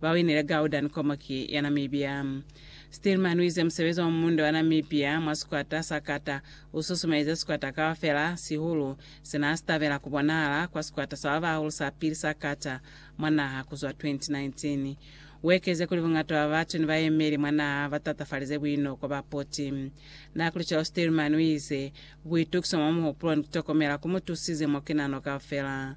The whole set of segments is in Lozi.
Ba winile Gaudan Komoki ya Namibia. Stillman uize musebezi wa mumundo wa Namibia mwa sikwata sa kata u susumelize sikwata kaufela, sihulu se naa si tabela ku bonahala kwa sikwata sa ba bahulu sa pili sa kata mwa naha ku zwa 2019. U ekeze kuli buñata bwa batu ni bayemeli mwa naha ba tatafalize buinoko ba poti. Naa kuli cwalo Stillman uize, Buitukiso mwa muhupulo ni ku tokomela ku mu tusize mo ki nano kaufela.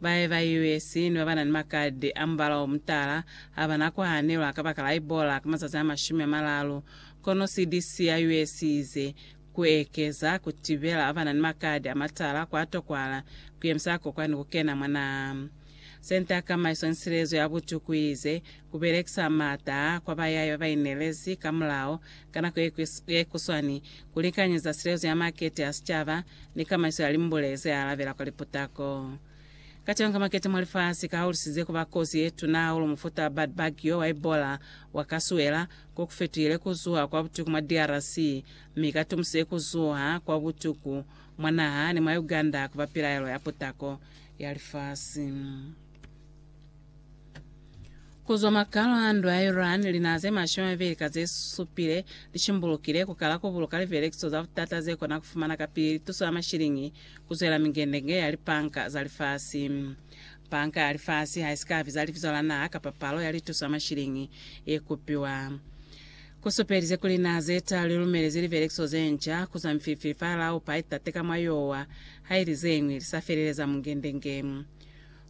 Bae ba US ni ba ba na ni makadi a mubala o mutala ha ba na ku hanelwa kabakala Ebola ka mazazi a mashumi a malalu, kono CDC ya US i ize, Ku ekeza ku tibela ba ba na ni makadi a matala kwa tokwahala ku yemisa kokwani ku kena mwa naha. Senta ya Kamaiso ni Silezo ya Butuku i ize, Ku belekisa maata a kwa bayai ba ba inelezi ka mulao Ka nako ye kuswani, ku likanyeza silezo ya makete a sicaba ni kamaiso ya limbule ze alabela kwa liputako. Katengo ka makete mwa lifasi ka hulusize ku ba kozi ye tuna hahulu mufuta bad bagyo wa Ebola wa ka suela ko ku fetuhile ku zuha kwa butuku mwa DRC mi ka tumusile ku zuha kwa butuku mwa naha ni mwa Uganda ku ba pilaelo ya putako ya lifasi. Ku zwa makalo a ndwa ya Iran, linaha ze mashumi a mabeli ka ze supile li shimbulukile ku kala ku buluka lipelekiso za butata ze kona ku fumana kapili lituso ya mashiliñi ku zwela mingendenge ya lipanka za lifasi. Panka ya lifasi ha i si ka biza libizo la naha kapa palo ya lituso ya mashiliñi ye kupiwa. Ku supelize kuli linaha ze taalu li lumelezi lipelekiso ze nca ku zwa mifilifili fa Laupa itate ka mwa yowa, ha ili ze ñwi li sa feleleza mungendenge.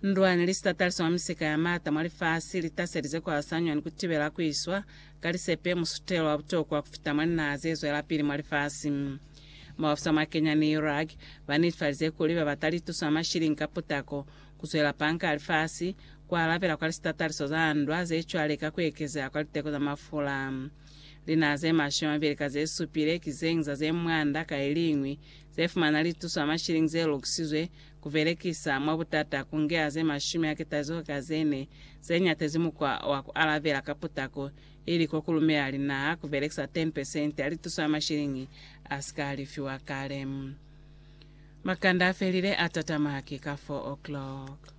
Ndwani, lisitataaliso mwa misika ya maata mwa lifasi, litaselize kuhasanywa ni kutibela kuiswa ka lisepe, musutelo wa butokwa kufita mwa linaha zezwelapili mwa lifasi. Maofisa mwa Kenya ni Iraq banetifalize kuli babata lituso ya mashilingi ka putako kuzwela panka ya lifasi, kualabela kwa lisitataaliso za ndwa zecwale ka kuekezeha kwa liteko za mafula. Linaha ze mashumi amabeli ka zesupile ki zeñi za ze mwanda ka iliñwi zefumana lituso ya mashilingi zelukisizwe Ku belekisa mwa butata ku nge aze mashumi a ketaziho ka ze ne ze nyatezi mukwa wa ku alabela ka putako, ili ko ku lumela linaha ku belekisa 10 pesenti ya lituso ya mashiliñi a si ka lifiwa kale. Makanda a felile a tatama haki ka 4 o'clock.